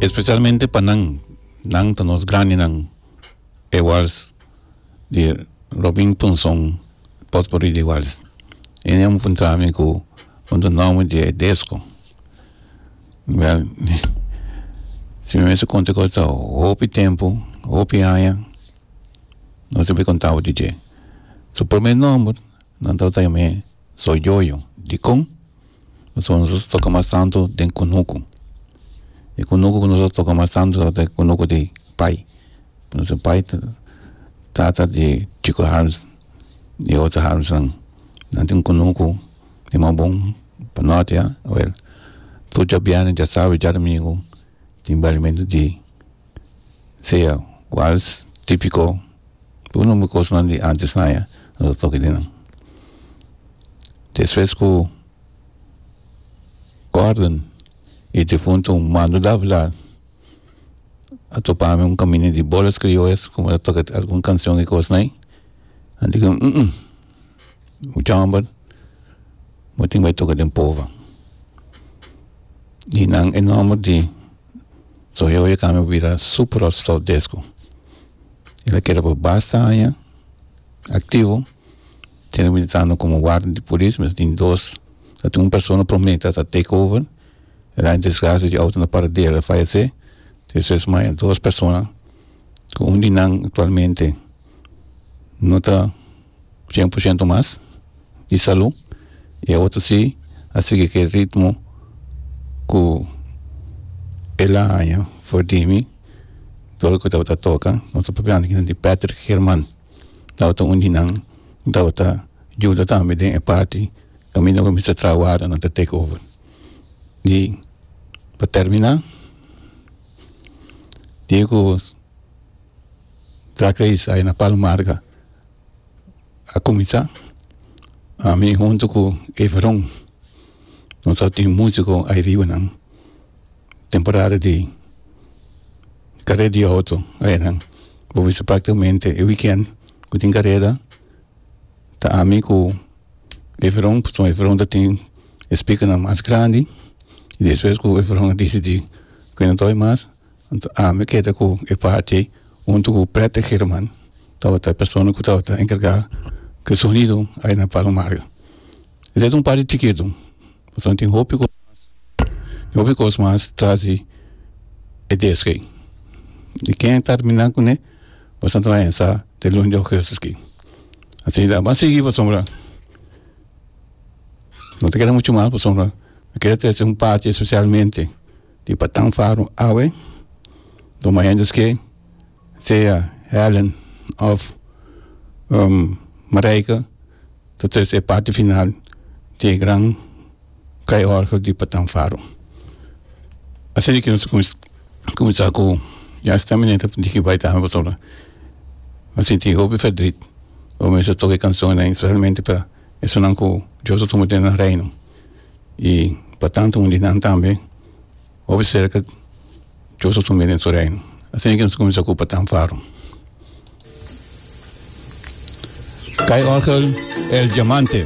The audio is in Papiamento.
Especialmente pa nan, nan ta nos grandinan, iguals di Robin Punson, potpourri di iguals. E niña a puntra mi cu con ta nomber di e desco. Wel, si mi mester conta cu ta hopi tempo, hopi aña, no sibi contabo di dje. Su prome nomber, nan tabata yam'e Soyoyo. Dicon? Pasobra nos ta toka mas tantu den kunuku e kunuku ku nos ta toka mas tantu tabata e kunuku di pai nos pai tata di chiko harms di otro harmsnan nan tin kunuku di mas bon pa norte awor tur chap biaha nan chap sabe djarmigo tin bairamento di Sea cual tipico cu nomber cosnan di antes haya no ta toki di nan. Despues cu Gordon y difunto Mando Davila a topa ami un camino di bolas criollas cu mi ta toca algun cancion y cosnan ayi a tic ami mucha homber bo tin bay toca den pova y nan e nomber di so e oye kami a bira super hot stove desku el a keda pa basta aña aktivo tene ku mitrando komo warda di polis mi ta tin dos ta tin un persona prome ta take over e daño desgracia di outo na para di el a fayese es es mas dos persona ku un di nan aktualmente no ta cien por ciento mas di salú i e otro si a sigui ku e ritmo ku el a haña for di mi tur loke ku tabata toka nos ta papiando aki di Patrick Herman tabata un di nan ku tabata yuda tambe den e parti kaminda por mester traha warda nan ta take over i pa termina diego traha kredi's aya na palo marga a kuminsá ami huntu ku Efron nos a tin músiko airibanan temporada di karé di outo ayanan bo bisa práktikamente e wikènt ku tin kareda ta ami ku Efron pasobra Efron ta tin e spikanan mas grandi i despues ku Efron a disidí ku e no tabata mas. Anto ami keda ku e parti ei huntu ku Pretty German tabata e persona ku tabata enkargá ku e sonido ai na Palo Mario. Esei ta un parti chikitu pasobra tin hopi kos mas tin hopi kos mas tras di e desk ei. I ken a terminá kuné pues anto a ensá te lun di ogesto aki. Asina ba sigui pasobra no ta keda muchu mas pasobra mi keda trese un parti espesialmente. Di Patang Faro awe lo mai hendes ke sea Helen of Marijke ta trece e parti final di e gran kai orgel di Patang Faro. Asina ke nos a kuminsa ku ya sta mineta diki bai ta abaso la a sinti hopi ferdrit bai mester toka e kansonnan espesialmente pa esunnan ku Dios a tuma den nan reino. i pa tantu un di nan tambe hopi serka chos su famia den su reino asina ke nos kuminsá ocupa tan faru kai orgel el diamante.